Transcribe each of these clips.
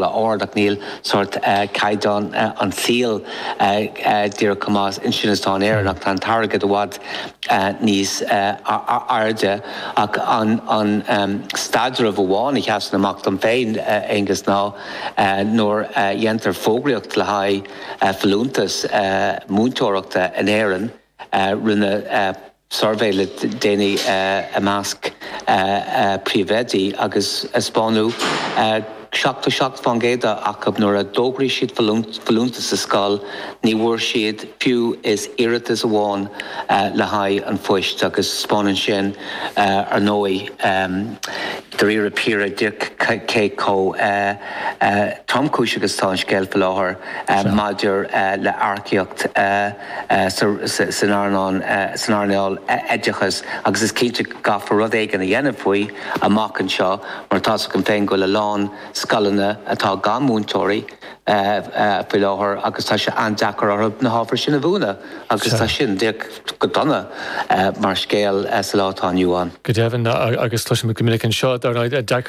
ard, ach níl sórt caighdeán an tsaoil díreach chomh maith ansin is atá in Éirinn, ach tá an t-airgead i bhfad níos airde. Ach an staidreamh amháin a sheasann amach dom féin, Aengus, ná nuair a dhéantar fógraíocht le haghaidh folúntas múinteoireachta in Éirinn, rinne suirbhé le déanaí i measc príomhoidí agus taispeánadh 77% acu nuair a d'fhógraigh siad folúntais sa scoil ní bhfuair siad fiú is iarratas amháin le haghaidh an phoist agus taispeánann sin ar ndóigh díreach, díreach cé chomh tromchúiseach is atá an scéal faoi láthair maidir le earcaíocht san earnáil oideachais agus is cinnte go gcaithfear rud éigin a dhéanamh faoi amach anseo mar tá's agam féin go bhfuil a lán scoileanna atá gan mhúinteoirí faoi láthair agus tá sé an-deacair orthu na hábhair sin a mhúineadh agus tá sin díreach go dona mar scéal sa lá atá inniu ann. Go deimhin, agus cloisimid go minic anseo,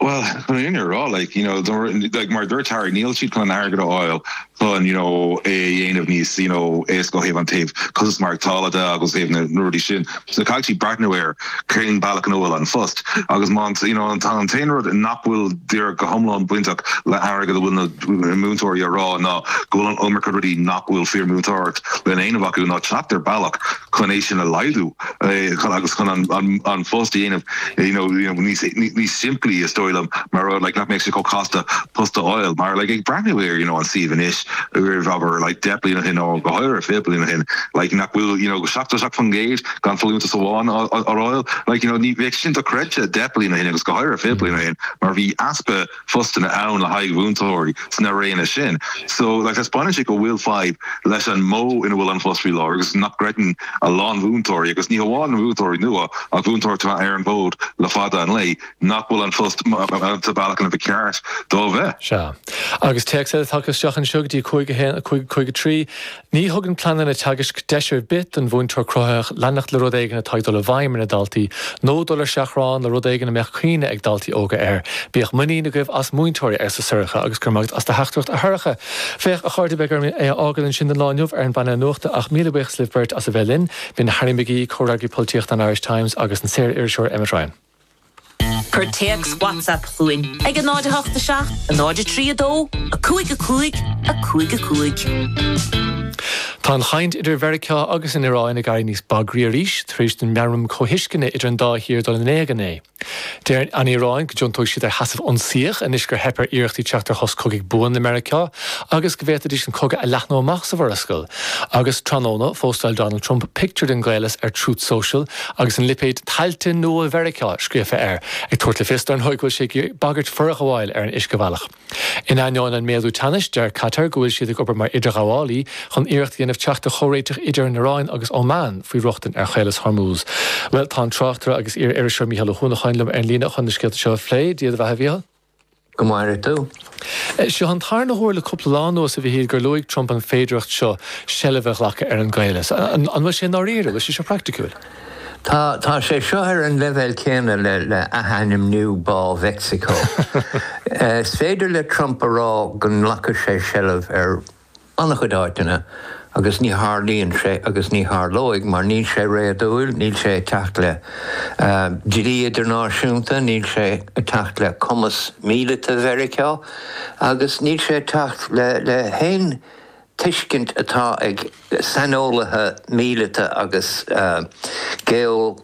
Bhuel, chun an fhírinne a rá, like, you know, like, mar a dúirt Harry, níl siad chun an airgead a fháil chun, you know, é a dhéanamh níos, you know, éasca ó thaobh an taobh costas maireachtála de agus ó thaobh na rudaí sin. So caithfidh siad breathnú ar cén bealach ina bhfuil an phost. Agus má, you know, tá an t-aon rud nach bhfuil díreach go hiomlán bainteach le hairgead a bhfuil na múinteoirí ag rá ná go bhfuil an iomarca rudaí nach bhfuil fíormhúinteoireacht le déanamh acu ná teacht ar bhealach chun é sin a laghdú agus chun an phost a dhéanamh níos simplí, is dóigh liom, mar rud nach mbeadh sé chomh casta post a fháil. Mar ag breathnú ar an suíomh anois, roimh abair deich mbliana ó shin nó go háirithe fiche bliain ó shin, nach bhfuil 77% gan folúntas amháin á fháil, like bheadh sin dochreidte deich mbliana ó shin agus go háirithe fiche bliain ó shin, mar bhí easpa. phostanna ann le haghaidh mhúinteoirí sna réanna sin. So, like, taispeáineann sé go bhfuil fadhb leis an modh ina bhfuil an phost faoi láthair agus nach gcreideann a lán mhúinteoirí, agus ní hamháin mhúinteoirí nua ach mhúinteoirí atá ar an bhfód le fada an lá, nach bhfuil an phost sa bhealach ina bhfuil ceart dó a bheith. Sea. Agus téacs eile tagtha isteach anseo go dtí 51553. Ní thugann pleananna teagaisc deis ar bith don mhúinteoir cruthaitheach leanacht le rud éigin atá ag dul i bhfeidhm ar na daltaí, nó dul ar seachrán le rud éigin a mbeadh cuimhne ag daltaí óga air. Bíodh muinín agaibh as múinteoirí, arsa Sorcha, agus go raibh maith agat as do theachtaireacht, a Shorcha. Féach, a chairde, beidh orm é a fhágáil ansin don lá inniu ar an bpainéal nuachta, ach míle buíochas libh beirt as a bheith linn, b'in Harry McGee, Comhfhreagraí Polaitíochta an Irish Times, agus an saor-iriseoir Emmet Ryan. Cuir téacs WhatsApp chugainn ag 08 7 03 2 5 5 5 5. Tá an chaint idir Mheiriceá agus an Iráin ag éirí níos bagraí arís tar éis don mheamram comhthuisceana idir an dá thír dul in éag inné. Deir an Iaráin go dtiontóidh siad ar sheasamh ionsaíoch anois gur theip ar iarrachtaí teacht ar shos cogaidh buan le Meiriceá agus go bhféadfaidís an cogadh a leathnú amach sa Mhurascaill. Agus tráthnóna, phóstáil Donald Trump pictiúr den gcaolas ar Truth Social agus an lipéad 'Tailte Nua Mheiriceá' scríofa air, ag tabhairt le fios, dar ndóigh, go bhfuil sé ag bagairt forghabháil ar an uiscebhealach. In ainneoin an méadú teannais, deir Qatar go bhfuil siad ag obair mar idirghabhálaí chun iarracht a dhéanamh teacht ar chomhréiteach idir an Iaráin agus Óman faoi rochtain ar Chaolas Hormuz. Bhuel, tá an tráchtaire agus iar-iriseoir Mícheál Ó hUanacháin liom ar an líne chun na scéalta seo a phlé. Dia do bheatha, a Mhíchíl. Go maire tú. Seo an tarna huair le cúpla lá anuas, a Mhíchíl, gur luaigh Trump an féidireacht seo seilbh a ghlacadh ar an gcaolas. An bhfuil sé i ndáiríre? Fiú is é seo praiticiúil? Tá. Tá sé seo ar an leibhéal céanna le athainmniú Bá Mheicsiceo. Is féidir le Trump a rá go nglacfaidh sé seilbh ar an-chuid áiteanna, agus ní tharlaíonn sé agus ní tharlóidh mar níl sé réadúil, níl sé ag teacht le dlí idirnáisiúnta, níl sé ag teacht le cumas míleata Mheiriceá agus níl sé ag teacht le haon tuiscint atá ag saineolaithe míleata agus geo.